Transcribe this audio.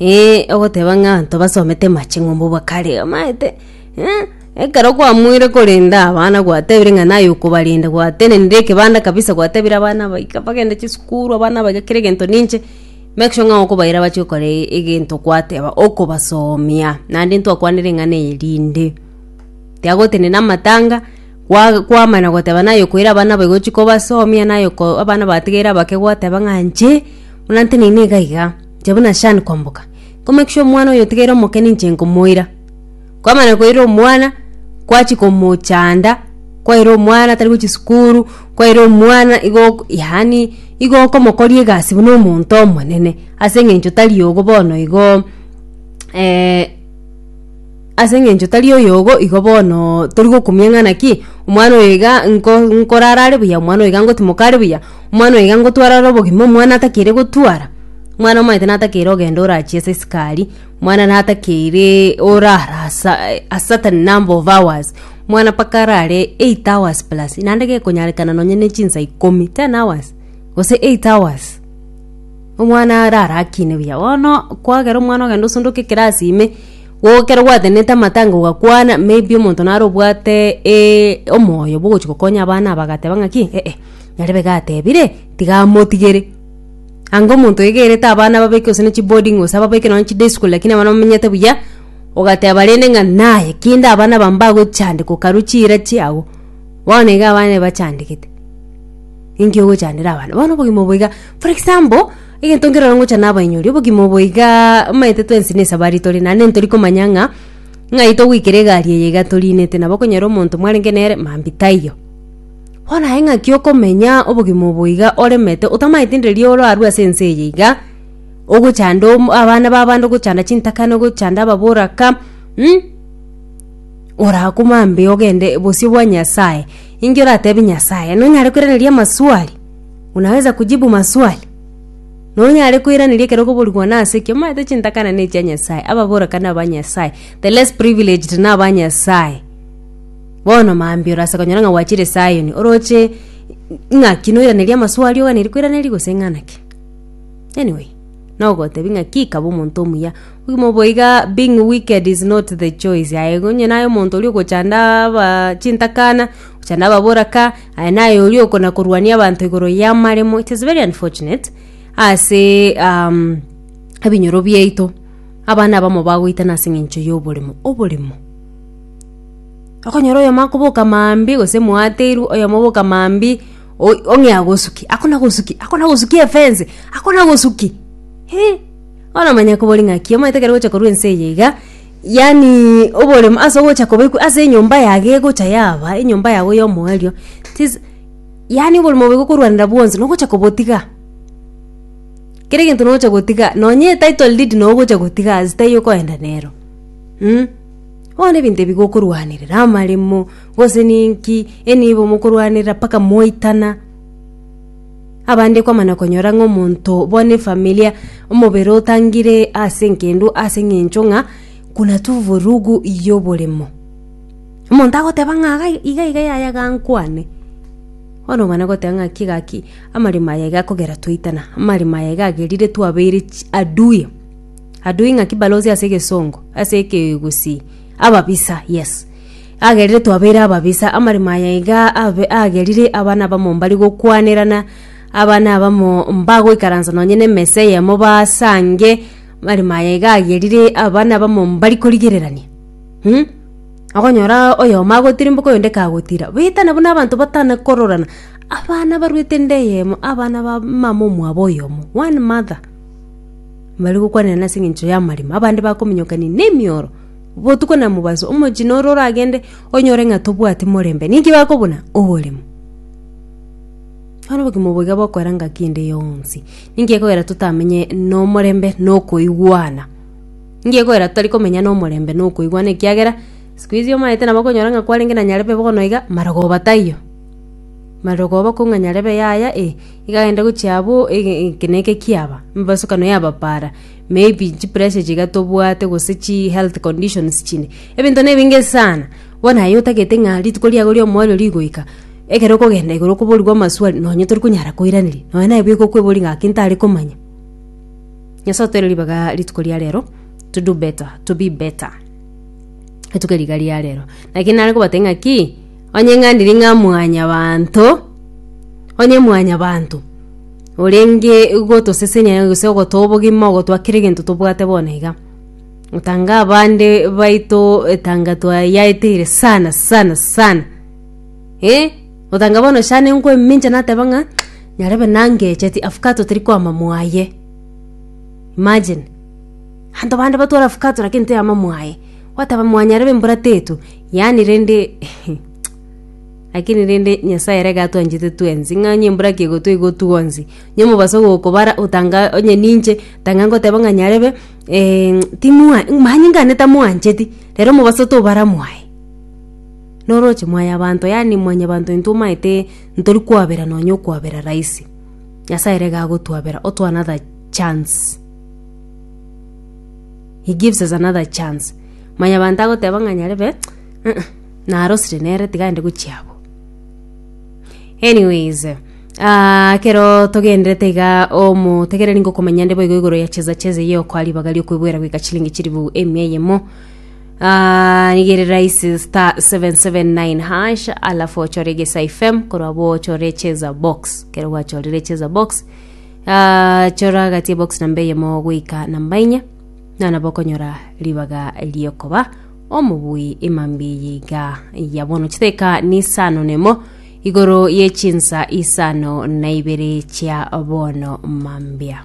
Ee, ogoteba ng'a abanto basomete amaching'umbu bo kare, omaete eh, ekero kwamoire korenda abana gwatebire ng'a naye okobarenda, gwatenenire ekebanda kabisa gwatebire abana abaika bagende chisukuru, abana abaika kera egento ninche, make sure ng'a okobaira bache gokora e- egento gwateba, okobasomia, naende ntwakwanire eng'ana eye rinde. Tiagotenena amatanga, kwa kwamana goteba naye okoira abana aba igo chikobasomia naye oko abana batigaire abake gwateba ng'a inche, buna nteneine iga iga. Inche buna Shan komboka, nkomekisha omwana oyo otigeire omokene inche nkomoira. Kwamana koira omwana, kwachia komochanda, kwaira omwana tari gochia sukuru, kwaira omwana igo ok yaani igo okomokoria egasi buna omonto omonene, ase eng'encho tari obo bono igo Ase engencho tari oyogo igo bono tori gokumia ng'ana ki, omwana oyo iga nko nkorara are buya, omwana oyo iga ngotimoka are buya, omwana oyo iga ngotwara are obogima, omwana atakeire gotwara, omwana omanyete natakeire ogenda orachie ase esukari, omwana natakeire orara asa a certain number of hours, omwana mpaka arare eight hours plus naende gekonyarekana nonye ne chinsa ikomi, ten hours gose eight hours, omwana arara akine buya, bono kwagera omwana ogenda osondoke ekerasi ime. Igo ekero gwatenenete amatango ogakwana, maybe omonto nare obwate e- omoyo bwogochi gokonya abana aba agateba ng'aki eh eh, nyarebe iga atebire, tiga amotigere. Anga omonto oegerete abana ababeke gose ne chiboarding gose ababeke nonye chiday school lakini abana bamenyete buya, ogateba rende ng'a naye kende abana aba mbagochandeka okaru chira chiago, bono iga abana ebachandegete. ninki ogochandera abana bono obogima obo iga for example egento nkerore ngochana abainyori obogima obo igaa omanyete twensi na esabari tore naende ntori komanya ng'a ng'ai togoikera egari eye iga torinete nabo okonyora omonto mwarenge nere mambi taiyo. Bono aye ng'aki okomenya obogima obo iga oremete otamaeti nde riria orarwe ase ense eye iga ogochanda om abana ba abande ogochanda chintakana ogochanda ababoraka mh. orakumambe ogende bosio bwa Nyasaye, inki oratebie Nyasaye? Nonyare koiraneria amaswali? Unaweza kujibu maswali? Nonyare koiraneria ekero okoborigwa nase ki? Omanyete chintakana nechia Nyasaye, ababoraka naba Nyasaye, the less privileged naba Nyasaye. Bono mambe orase konyora ng'a gwachire Zion, oroche ng'aki noiraneria amaswali oganeiri koiraneria gose ng'a naki? Anyway. Nogotebia ng'a ki kaba omonto omuya? Obogima obo iga being wicked is not the choice. Aye onye naye omonto oria ogochanda aba chintakana, ochanda ababoraka, aye naye oria okona korwania abanto igoro y'amaremo. It is very unfortunate ase um, ebinyoro biaito, abana abamo bagoitana ase eng'encho y'oboremo. Oboremo, okonyora oyomo akoboka maambia gose mwateirwe, oyomo oboka maambia. Oi, ong'e agosuki, akona gosuki, akona gosuki efense, akona gosuki. He, bono manya kobori ng'aki, omanyete ekero gocha korwa ense eye iga, yaani oboremo ase ogocha kobekwa ase enyomba yago egocha yaba, enyomba yago ya omoerio, tis yaani oboremo obo iga okorwanera bwonsi nogocha kobotiga. Kera egento nogocha gotiga, nonye etitle deed nogocha gotiga as taiyo okoenda nero mh. Bono ebinto ebi gokorwanerera, amaremo, gose ninki, e nibo mokorwanerera mpaka mwaitana. Abande kwamana konyora ng'a omonto bono efamilia, omobere otangire ase enkendwa ase eng'encho ng'a kuna tu vurugu ya oboremo. Omonto agoteba ng'a iga iga iga yaya ga nkwane, bono omana goteba ng'a ki gaki amaremo aya iga akogera twaitana, amaremo aya iga agerire twabeire chi adui. Adui ng'aki balosie ase egesongo, ase ekegusii, ababisa, yes. Agerire twabeire ababisa, amaremo aya iga abe- agerire abana abamo mbare gokwanerana, abana abamo mbagoikaransa nonye na emesa eyemo basange, amaremo aya iga agerire abana abamo mbari korigererania mh, okonyora oyomo agotirimboka oyonde kagotira, baetana buna abanto batana kororana, abana baruete ende eyemo, abana ba mama omwabo oyomo, one mother. mbare gokwanera nase engencho y'amaremo, abande bakominyokania nemioro botuko na mobaso, omochina ore oragende onyore ng'a tobwati morembe, ninki bakobuna? Oboremo. Bono obogima obo iga bokoera ng'a kende yonsi. Ninki gekogera totamenye nomorembe na okoigwana? Ninki gekogera totari komenya nomorembe na okoigwana ekiagera, sikuizi omaete nabo okonyora ng'a kwarenge na Nyarebe bono iga, marogoba taiyo. Marogoba kong'anyare be yaya eye, igagenda gochia abwo eke neke kiaba, emebasukano y'abapara, maybe chipressure ichi iga tobwate gose chihealth conditions chinde, ebinto na ebinge sana. Bono aye otagete ng'a rituko riago ri'omoerio rigoika, ekero okogenda igoro okoborigwa amaswali nonye torikonyara koiraneria, nonye naye bweka okweboria ng'a gaki ntare komanya. Nyasae otoeire ribaga rituko ria rero to do better, to be better rituko riga ria rero. Naki nare kobatebia ng'aki. Onye ng'andiri ng'a mwanyabanto, onye mwanyabanto orenge gotosesenyayo gose ogotwa obogima ogotwa kera egento tobwate bono iga. Otanga abande baito etanga twayaeteire sana sana sana eh, otanga bono shana nkoemincha nateba ng'a nyarebe nangecheti avocado teri kwama mwaye, imagine. Abanto bande batware avocado lakini teyama mwaye, gwateba mwanyarebe mbura tetwe. Yaani rende lakini rende nyasaye ere gatwanchete twensi ng'a onye mbura ki egotwa igotwa gonsi onye omobaso ogokobara otanga onye ninche tanga ngoteba ng'a nyarebe timwa manye ng'a neta mwancheti rero omobaso tobara mwaye noroche mwaye abanto yaani mwanyabanto intwe omanyete ntori kwabera nonye okwabera rahisi nyasaye ere gagotwabera otwe another chance. He gives us another chance. Mwanyabanto agoteba ng'a nyarebe, "Uh-uh, narosire nere tiga aende gochia abwo. Anyways, ah, ekero togenderete iga omotegereri ngokomanya nde boigo igoro ya cheza cheza eye okoa ribaga riokwebwera goika chilingi chiribu emia eyemo Ah, nigo ere rahisi star 779 hash alafu ochore egesa ifem korwa bo ochore cheza box kero gwachorire cheza box Ah, chora gati box namba eyemo goika namba inya na nabo okonyora ribaga riokoba omobui emambi yiga ya bono chiteka nisano nemo igoro ye chinsa isano na ibere chia bono mambia